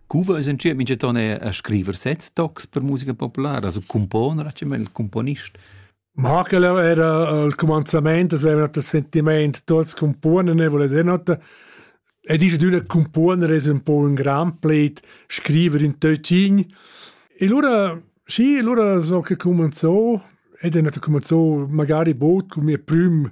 Cuva es in tschia minchaton eir a scriver sets tocs per musica populara, also componer, a dschet il componist. Markel era al cumanzament, es veva il sentiment tuots componen e voless not E dice d'una componer es un po un gran pleit scriver in Töcin. E lura, sì, lura so che comenzò, ed è nato comenzò magari bod con mio prüm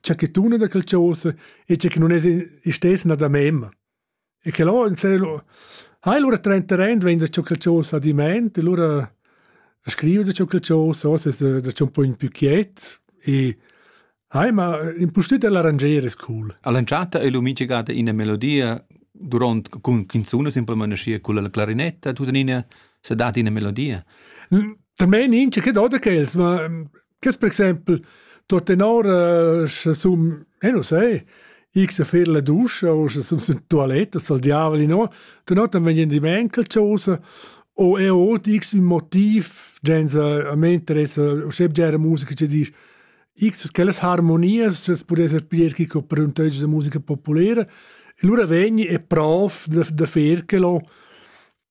cha que tuna da quel chosa e cha que non es istess na da mem. E que lò in celo ha lura trenteren vegn da cho quel chosa ad ment e lura scrive da cho quel chosa, os es da cho un po in più quiet e Hai, ma impustüt dell'arranger es cool. All'entschatta è lumigigata ina melodia durant cun canzuna semplamain scia con la clarinetta, tut in ina se dat ina melodia. También in che da che els, ma Che per exempel tuttenor uh, sche sum eh non sai ich se fer la duscha o sche sum in toilette soll diavoli no dann hat dann wenn die Menkel chose o e ot x un motiv genza a me interessa o scheb gera musica che dici x che las harmonias das pode esser pirchi co per un teggio de musica popolare e lura vegni e prof de de ferchelo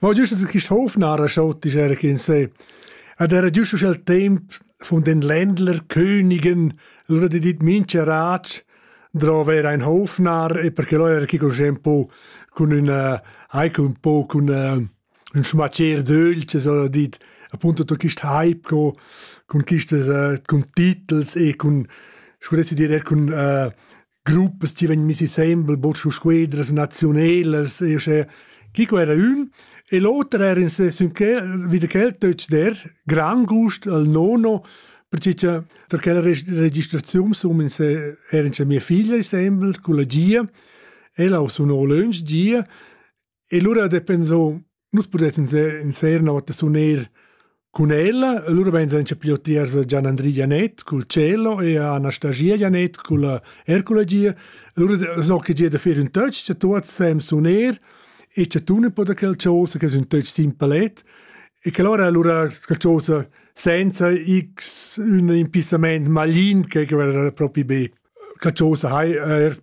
Ma giusto che quist hof narra schon dischera che in se. Ed era giusto sch'el temp von den Ländler Königen lura di dit mincha rat drova era ein hofnar e perché lo era chi conosce un po cun una anche un po cun uh, un schmacchier dolce so dit appunto to quist hype co con quistes uh, con titels e con scuressi dir er con uh, gruppas ti vegn missi sembel buc su squedras naziunelas e sche chi co era ün e l'oter era in se sün che wieder quel deutsch der gran gust al nono perché cha der quella registrazionssumme in se era in cha mia figlia sembel con la gia ella o suno lunch gia e lura de penso Nus pudessin sera una volta suner cun ella, allora pensan che più tiers Gian Andri Janet col cello e Anastasia Janet col Ercula Gia. Allora so che gia da fare un touch, che tutti sem suner e che tu ne poda quel cosa che è un touch simpelet e che allora allora quel cosa senza x un impissament maglin che che era proprio be che cosa hai er